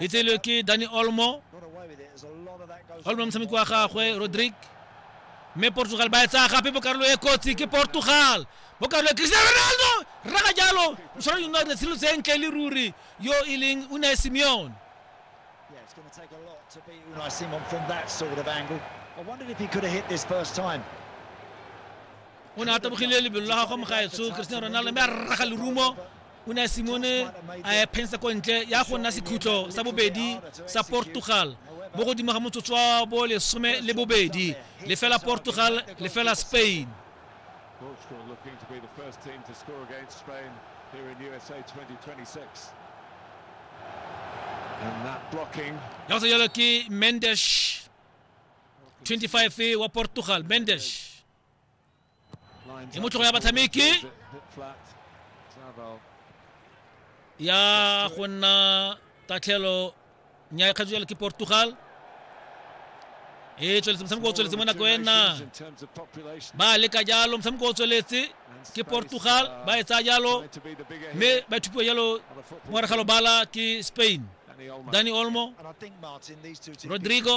itse le ke dani olmo olmo motshameki wa gagwe rodrigue mme portugal ba etsaya gape mo karolo e kotsi ke portugal mo karolo e cristiano ronaldo rraga jalo o tshwanetse go nna dira tshilo tse ntle le ruri yo e leng unai simeone Yeah, it's going to take a lot to beat Unai Simon from that sort of angle. I wondered if he could have hit this first time. o ne a tabogile lebelo la gagwe mo gaetsho cristiano ronaldo mme a rraga lerumo o ne a simone a ephensa ko ntle ya go nna sekhutlo sa bobedi sa portugal mo godimo ga motsotso wa bo lesome le bobedi lefela portugal lefela spain Portugal looking to be the first team to score against Spain here in USA 2026. And that blocking. Ya go yalo ke Mendes 25 wa Portugal Mendes Ni motlhogo ya batshameki ya go nna tatlhelo nya e kgatswa ke portugal e tsweletse motshameko o tsweletse mo nako ena ba leka jalo motshameko o tsweletse ke portugal ba e tsaya jalo mme ba thupiwa jalo mogare ga lobala ke spain dani olmo rodrigo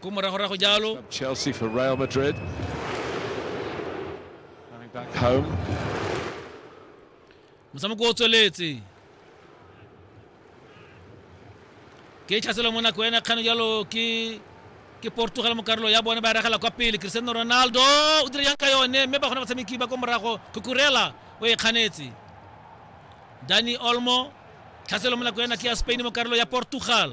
Ko moragorago jalo. Chelsea for Real Madrid. Coming back home. Motshameko o tsweletse. Ke tshaselo mo nako ena kgano jalo ke ke Portugal mo karolo ya bone ba ragela kwa pele Cristiano Ronaldo o dira yang ka yone mme ba gona batshameki ba ko morago Cucurella o e kganetse Dani Olmo tlhaselo mo nako ena ke ya Spain mo karolo ya Portugal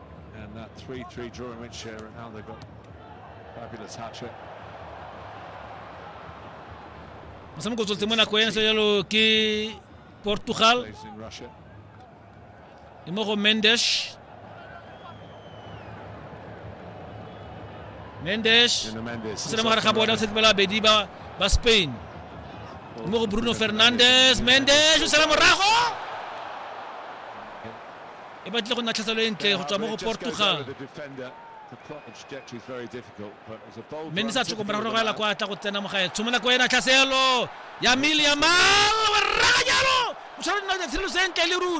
And that 3-3 draw in which uh, Ronaldo got fabulous hat trick. Masama go tsotse mona koena se jalo ke Portugal. E mo go Mendes. Mendes. Se le mogare ga bona o tsetse bela bedi ba ba Spain. E mo go Bruno Fernandes, Mendes o sela morago. e batlile go nna tlhaselo e ntle go tswa mo go portugal mme ne sa tshoko morago go ela kwa tla go tsena mo gae tshomola ko ena tlhaselo ya mile ya mal o raganyalo o tshwara dinao tsa tshirelo sentle le ruri